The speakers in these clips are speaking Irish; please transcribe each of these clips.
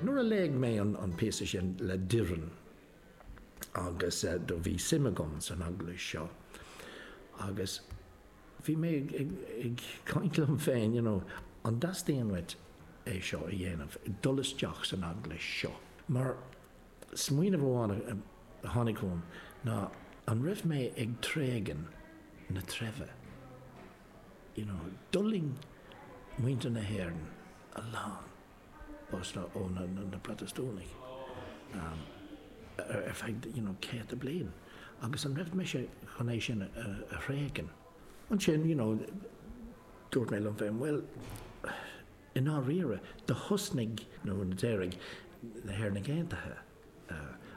Nuair a léigh mé an píosa sin le Doireann agus do bhí suim agam san Eaglais seo agus bhí mé ag caint liom féin you know an dteastaíonn uaim é seo a dhéanamh, dul isteach san Eaglais seo? Mar smaoineamh amháin a tháinig chugam ná an raibh mé ag tréigean na treibhe? you know, d'fhulaing muintir na hÉireann a lán, bhásta ó na Protastúnaigh ar feadh, you know, céadta bliain agus an raibh mise chun é sin a thréigean? Ansin, you know, dúirt mé liom féin, bhuel, i ndáiríre, do thosnaigh, nó d'éirigh na hÉireannaigh Aontaithe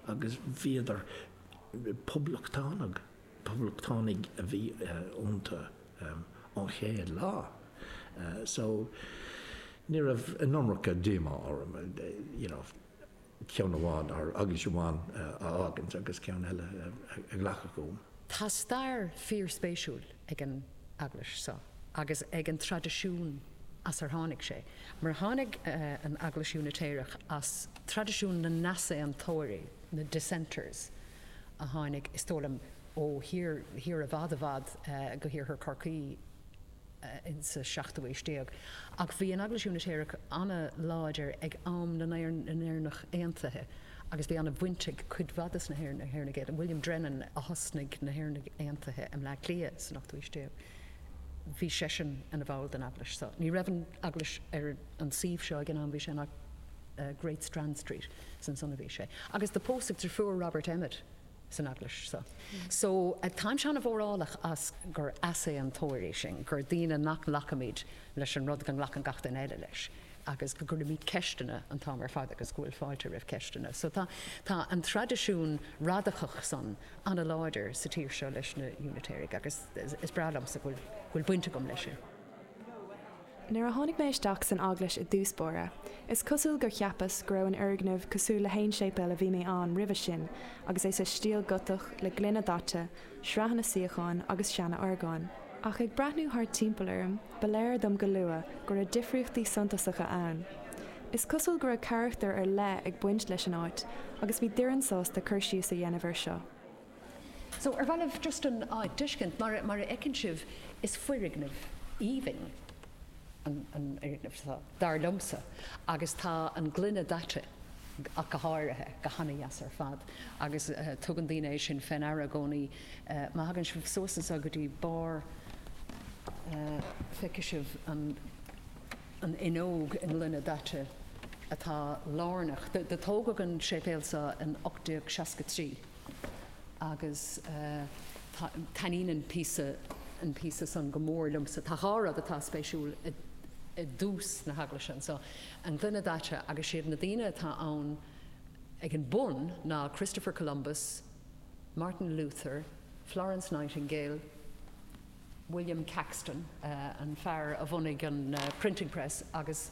agus bhíodar poblachtánach Poblachtánaigh a bhí iontu ón chéad lá so ní raibh an iomarca díomá orm, you know, ceann amháin, or eaglais amháin, a fhágaint agus ceann eile a ghlacadh chugam. Tá stair fíorspéisiúil ag an eaglais seo agus ag an traidisiún as ar tháinig sé, mar tháinig an Eaglais Úinitéireach as traidisiún na n-easaontóirí, na dissenters. a tháinig, is dóigh liom, ó, siar i bhfad i bhfad go hIarthar Chorcaí sa seachtú haois déag. Ach bhí an Eaglais Úinitéireach an-láidir ag am na nÉireannach Aontaithe agus bhí an-bhaint ag cuid mhaith de na hÉireannaigh Aontaithe, William Drennan a thosnaigh na hÉireannaigh Aontaithe i mBleá Cliath san ochtú haois déag, bhí seisean ina bhall den eaglais seo. Ní raibh an eaglais ar an suíomh seo ag an am, bhí sé in Great Strand Street. 's ansan a bhí sé agus do pósadh drifiúr Robert Emmet san eaglais so. So táimse ana mhórálach as gur easaontóirí sinn, gur daoine nach nglacaimid leis an rud go nglacann gach éinne eile leis agus go gcuirimid ceisteanna an t-am ar fad agus go bhfuil fáilte roimh ceisteanna. So tá tá an traidisiún radacach san ana láidir sa tír seo leis na Unitéirigh agus is breá liomsa go bhfuil go bhfuil baint agam leis sin. Nuair a tháinig mé isteach san eaglais i dtús báire, is cosúil gur cheapas go raibh an fhoirgneamh cosúil le haon séipéal a bhí mé ann roimhe sin agus é sa stíl Gotach le gloine daite, sraitheanna suíocháin agus seana orgán. Ach ag breathnú thart timpeall orm, ba léir dom go luath go raibh difríochtaí suntasacha ann. Is cosúil go raibh carachtar ar leith ag baint leis an áit agus bhí Doireann sásta cur síos a dhéanamh ar seo. So, ar bhealach, just an áit a thuiscint, mar a fheiceann sibh, is foirgneamh aoibhinn an fhoirgneamh seo, dar liomsa, agus tá an gloine daite ach go háirithe, go han-deas ar fad agus tugann daoine é sin fé ndeara i gcónaí. Má thagann sibh suas anso go dtí barr, feicfidh sibh an fhuinneog i ngloine daite atá lárnach. Do tógadh an séipéal so in 1863. Agus taitníonn an píosa, an píosa san go mór liomsa. Tá dhá rud atá spéisiúil i dtús na heaglaise anso, an gloine daite agus siad na daoine atá ann ag an bun ná Christopher Columbus, Martin Luther, Florence Nightingale, William Caxton, an fear a bhunaigh an Printing Press agus.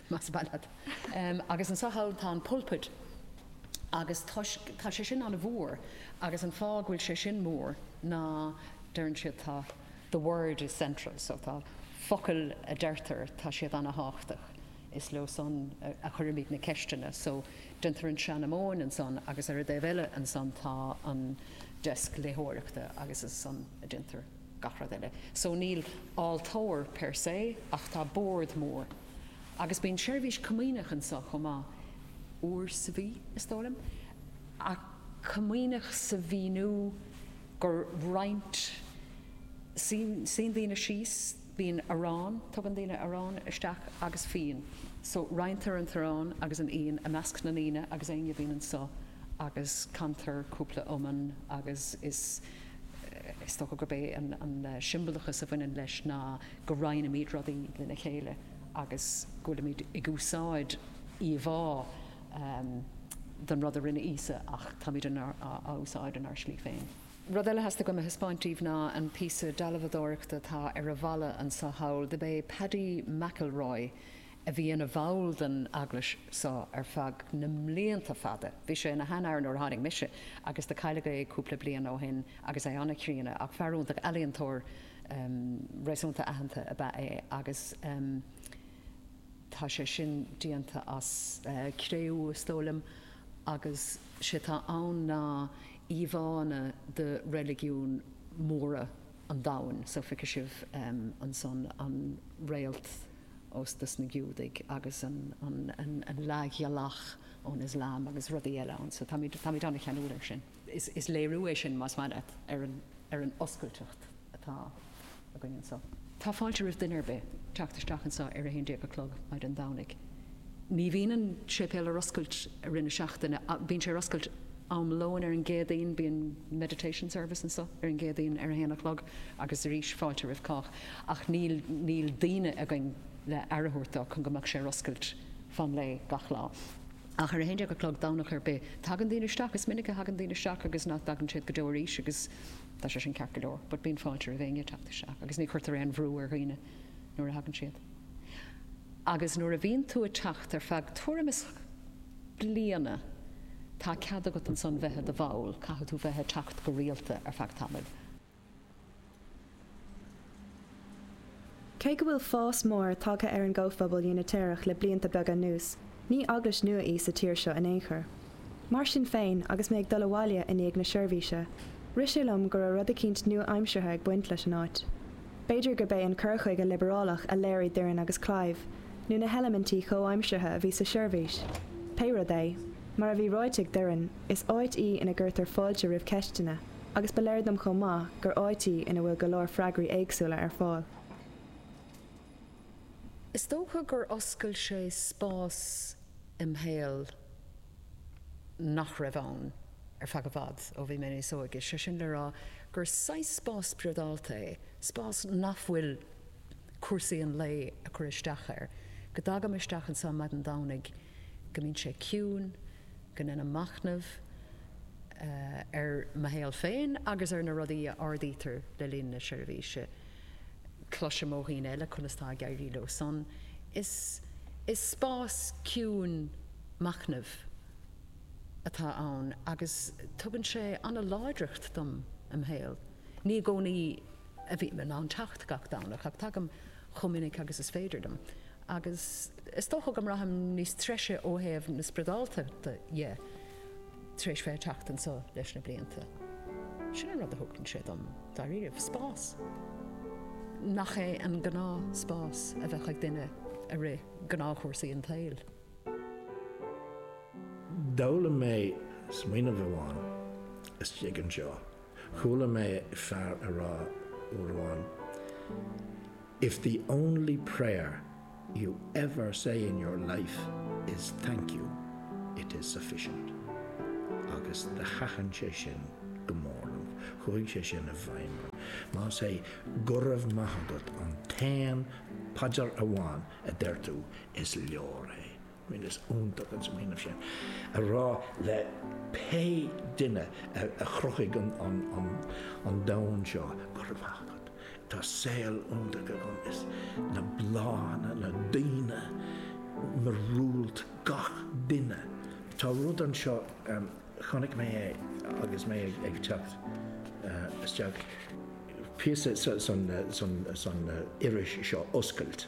Más maith leat. Agus anso thall tá an pulpit agus toisc, tá sé sin an-mhór agus an fáth go bhfuil sé sin mór ná deireann siad tá the word is central so tá focail a deirtear tá siad an-thábhachtach, is leo san a chuirimid na ceisteanna so déantar an seanmóin ansan agus ar an dtaobh eile ansan tá an desk léitheoireachta agus is ansan a déantar. gach rud eile. So níl altóir per se ach tá bord mór agus bíonn seirbhís comaoineach anso chomh maith, uair sa mhí, is dóigh liom, ach comaoineach sa mhíniú gur roinnt suíonn daoine síos, Bíonn arán, tugann daoine arán isteach agus fíon. So, roinntear an t-arán agus an fhíon i measc na ndaoine agus éinne a bhíonn anso agus cantar cúpla iomann agus is, is dócha gurb é an siombalachas a bhaineann leis ná go roinnimid rudaí lena chéile agus go bhfuilimid ag úsáid íomhá den rud a rinne Íosa ach táimid á úsáid inár slí féin. Rud eile a theastaigh uaim a thaispeáint díbh ná an píosa dealbhadóireachta atá ar an bhfalla anso thall. Do b'é Paddy McElroy a bhí ina bhall den eaglais so ar feadh na mblianta fada. Bhí sé ina sheanfhear nuair a tháinig mise agus do cailleadh é cúpla bliain ó shin agus é an-chríonna ach fear iontach, ealaíontóir réasúnta aitheanta ab ea é agus tá sé sin déanta as cré-umha, is dóigh liom, agus sé tá ann ná. íomhánna de reiligiúin mhóra an domhain, so feicfidh sibh ansan an réalt ós na Giúdaigh agus an leathghealach ón Ioslam agus rudaí eile ann, so táimid ana-cheanúil air sin. Is léiriú é sin más maith leat ar an oscailteacht atá. againn anseo. Tá fáilte roimh duine ar bith teacht isteach anseo ar a haon déag a chlog maidin Domhnaigh. Ní bhíonn an séipéal ar oscailt i rith na seachtaine ach bíonn sé ar oscailt am lóin ar an gCéadaoin. Bíonn meditation service anseo ar an gCéadaoin ar a haon a chlog agus arís tá fáilte roimh cách ach níl níl daoine againn le aire a thabhairt dó chun go mbeadh sé ar oscailt fan an lae gach lá. Ach ar a haon déag a chlog Domhnach ar bith tagann daoine isteach. Is minic a thagann daoine isteach agus nach dtagann siad go deo arís agus. Tá sé san ceart go leor, but bíonn fáilte roimh éinne teacht isteach agus ní chuirtear aon bhrú ar dhaoine nuair a thagann siad. Agus nuair a bhíonn tú ag teacht ar feadh tuairim is bliana, tá cead agat ansan bheith i do bhall, caithfidh tú bheith ag teacht go rialta ar feadh tamaill. Cé go bhfuil fás mór tagtha ar an gcomhphobal Úinitéireach le blianta beaga anuas, ní eaglais nua í sa tír seo in aon chor. Mar sin féin, agus mé ag dul abhaile i ndiaidh na seirbhíse, rith sé liom go raibh rud eicínt nua-aimseartha ag baint leis an áit. B'fhéidir gurb é an cur chuige liobarálach a léirigh Doireann agus Clive, nó na heilimintí comhaimseartha a bhí sa tseirbhís, pé rud é, mar a bhí ráite ag Doireann, is áit í ina gcuirtear fáilte roimh ceisteanna. agus ba léir dom chomh maith gur áit í ina bhfuil go leor freagraí éagsúla ar fáil. Is dócha gur oscail sé spás im' shaol nach raibh ann ar feadh i bhfad, ó bhí mé níos óige, sé sin le rá gur saghas spás spriodálta é, spás nach bhfuil cúrsaí an lae ag cur isteach air, go dtagaim isteach anso maidin Domhnaigh, go mbíonn sé ciúin, go ndeinim machnamh ar mo shaol féin agus ar na rudaí a ardaítear le linn na seirbhíse. Cloisim ó dhaoine eile conas atá ag éirí leo san. Is spás ciúin machnaimh atá ann agus tugann sé ana-láidreacht dom im' shaol. Ní i gcónaí a bhím in ann teacht gach Domhnach ach tagaim chomh minic agus is féidir dom. Agus is dócha go mbraithim níos treise ó thaobh na spriodáltachta de tar éis bheith ag teacht anso leis na blianta. Sin an rud a thugann sé dom, dáiríribh, spás. Nach é an gnáth spás a bheadh ag duine i rith gnáthchúrsaí an tsaoil. D'fhoghlaim mé smaoineamh amháin istigh anseo. Chuala mé fear a rá uair amháin, If the only prayer you ever say in your life is thank you, it is sufficient. Agus thaitin sé sin go mór liom. Chuaigh sé sin i bhfeidhm orm. Más é Go raibh maith agat an t-aon phaidir amháin a deir tú, is leor é. Bhuel, is iontach an smaoineamh sin, a rá le pé duine a chruthaigh an domhan seo, Go raibh maith agat, tá saol iontach agam, is na bláthanna, na daoine, miorúilt gach duine. Tá rud anseo, chonaic mé é agus mé ag teacht isteach, píosa san iris seo, Oscailt.